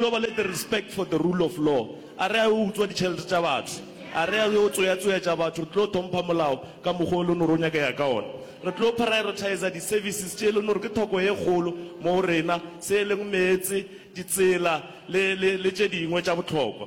Yo ba le the respect for the rule of law, a re a yo utswa ditšhelete tša batho, a re a yo tsoyatsoyatša batho, re tlo thompha molao ka mokgwa o le nore o nyakega ka ona. Re tlo prioritizer di services tše e le nore ke thoko ye kgolo mo go rena, se e leng meetse, ditsela le, le, le tše dingwe tša bohlokwa.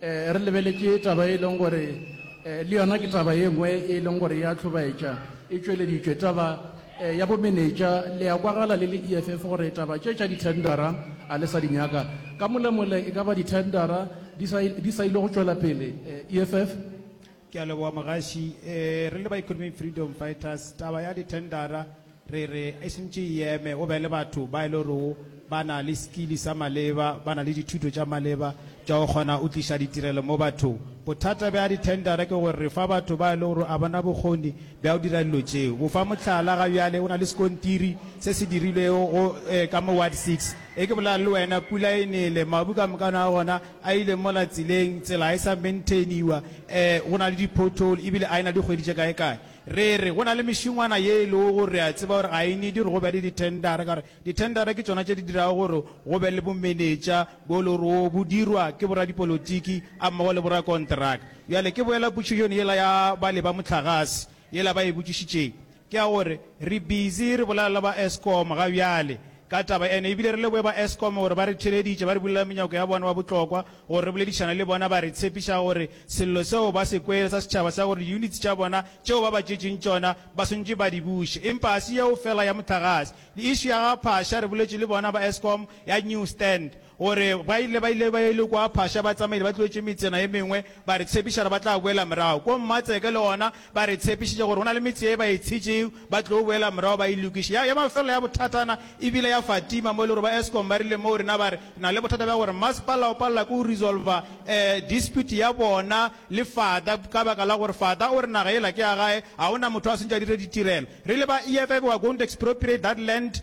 Re lebeletše taba ye e leng gore le yona ke taba ye nngwe ye e leng gore ya hlobaetša e tšweleditšwe. Taba ya bomenetša, le ya kwagala le le EFF gore taba tše tša dithendara a le sa di nyaka. Ka molemole e ka ba dithendara di sa, di sa ile go tšwela pele EFF? Ke a leboga mogaši. Re le ba Economic Freedom Fighters, taba ya dithendara, Re re e šntše e eme, go be le batho ba e le gorego ba na le sekili sa maleba, ba na le dithuto tša maleba tša go kgona go tliša ditirelo mo bathong. Bothata bja dithendara ke gore re fa batho ba e le gore ga ba na bokgoni bja go dira dilo tšeo. Go fa mohlala, ga bjale go na le sekontiri se se dirilwego go, ee, ka mo Ward Six. Ge ke bolela le wena, pula e nele, mabu ka mokano a gona a ile mola tseleng, tsela ga e sa maintainiwa, ee, go na le di-pothole, e bile a e na dikgwedi tše kae-kae. Re re, go na le mešingwana ye e lego gore re a tseba gore ga e need gore go be le dithendara, ka gore dithendara ke tšona tše di dirago gore go be le bomenetša bo e lego gore wo bo dirwa ke boradipolotiki a mmogo le borakonteraka. Bjale ke boela potšišong yela ya bale ba mohlagase yela ba e botšišitšeng, ke ya gore re busy re bolela le ba Eskom ga bjale ka taba ena, e bile re leboge ba Eskom gore ba re theeleditše ba re bulela menyako ya bona wa bohlokwa Gore re boledišane le bona, ba re tshepiša gore sello seo ba se kwele sa setšhaba sa gore diyuniti tša bona tšeo ba ba tšetšeng tšona ba swanetše ba di buše. Empa ga se yeo feela ya mohlagase. Le išu ya ga Phasha, re boletše le bona ba Eskom ya New Stand gore ba ile ba ile ba ile kua Phasha, batsamaedi ba tlogetše metsena e mengwe, ba re tshepiša gore ba tla boela morago kua Mmatseke le gona Ba re tshepišitše gore go na le metse ye ba e tshitšego ba tlo boela morago ba e lokiše. Ya, ya mafelelo ya bothatana e bile ya Fatima mo e le gore ba Eskom ba rile moo rena ba re re na le bothata bja gore masepala o palela ke go resolva eh, dispute ya bona le Fata ka baka la gore Fata o re naga yela ke ya gae, ga go na motho a swantše a dire ditirelo. Re ile ba EFF we are going to expropriate that land.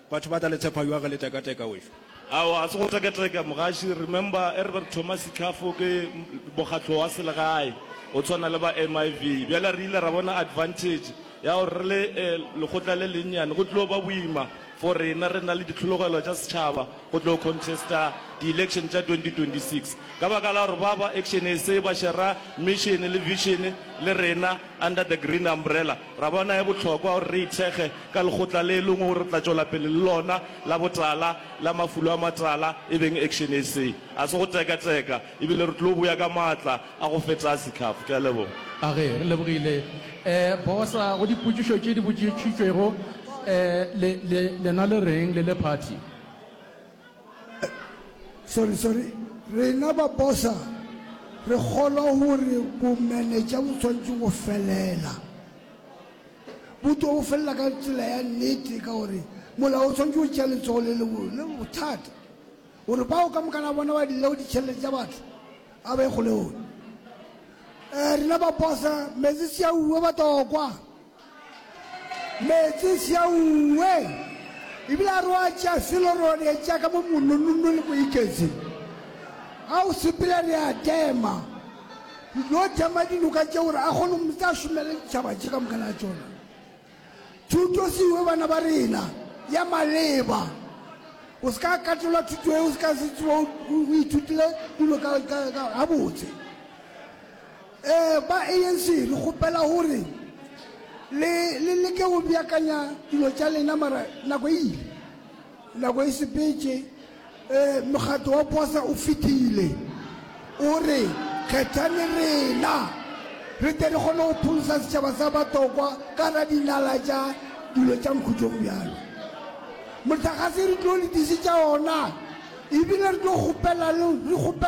Batho ba tla le tshepa ywa ge le teka teka wešo. Aowa ga se go teka teka mogaši, remember e re be re thoma Sikhafo ke mokgatlo wa selegae o tshwana le ba MIV. Bjale re ile ra bona advantage ya gore re le lekgotla le lennyane go tlo ba boima for rena re na le ditlhologelo tša setšhaba go tlo contesta di election tša 2026 ka baka la gore ba ba Action SA ba shera mission le vision le rena under the green umbrella. Ra bona e bohlokwa gore re ithekge ka lekgotla le lengwe gore re tla tšwela pele le lona la botala la mafulo a matala, e beng Action SA. A se go teka-teka, ebile re tlo boya ka maatla a go feta a setlhafo. Ke a leboga. Age, re lebogile Bosa. Go dipotšišo tše di botšišitšwego, le, le, lena le reng le le party? Sorry, sorry. Rena ba bosa re kgolwa gore bomenetša bo swanetše go felela. Bo tlo go felela ka tsela ya nnete ka gore molao o swanetše go tšea letsogo le le bothata gore bao ka mokana bona ba dilego ditšhelete tša batho a ba e kgolegone. Eh, rena ba bosa, mezisi a uwe ba tokwa. Meetse sjaue ebile a re wa tša selo re wa di etša ka mo mononno le moiketsi. Ga o sepela re a tema, re tlo tema dinoka tše gore a kgone go tla šomela ditšhaba tše ka moka la tšona. Thuto seiwe bana ba rena ya maleba, o se ka katelwa thuto e o se ka se tsebo o ithutile dilo gabotse. Ee, ba ANC re kgopela gore le, le leke go beakanya dilo tša lena, mara nako e ile. Nako e sepetše. Ee, mokgatlo wa posa o fetile. O re kgethani rena, re tle re kgone go pholosa setšhaba sa batokwa ka gare ga dinala tša dilo tša mokhutlong bjalo. Mohlagase re tlo le disetša ona, ebile re tlo kgopela le, re kgopela.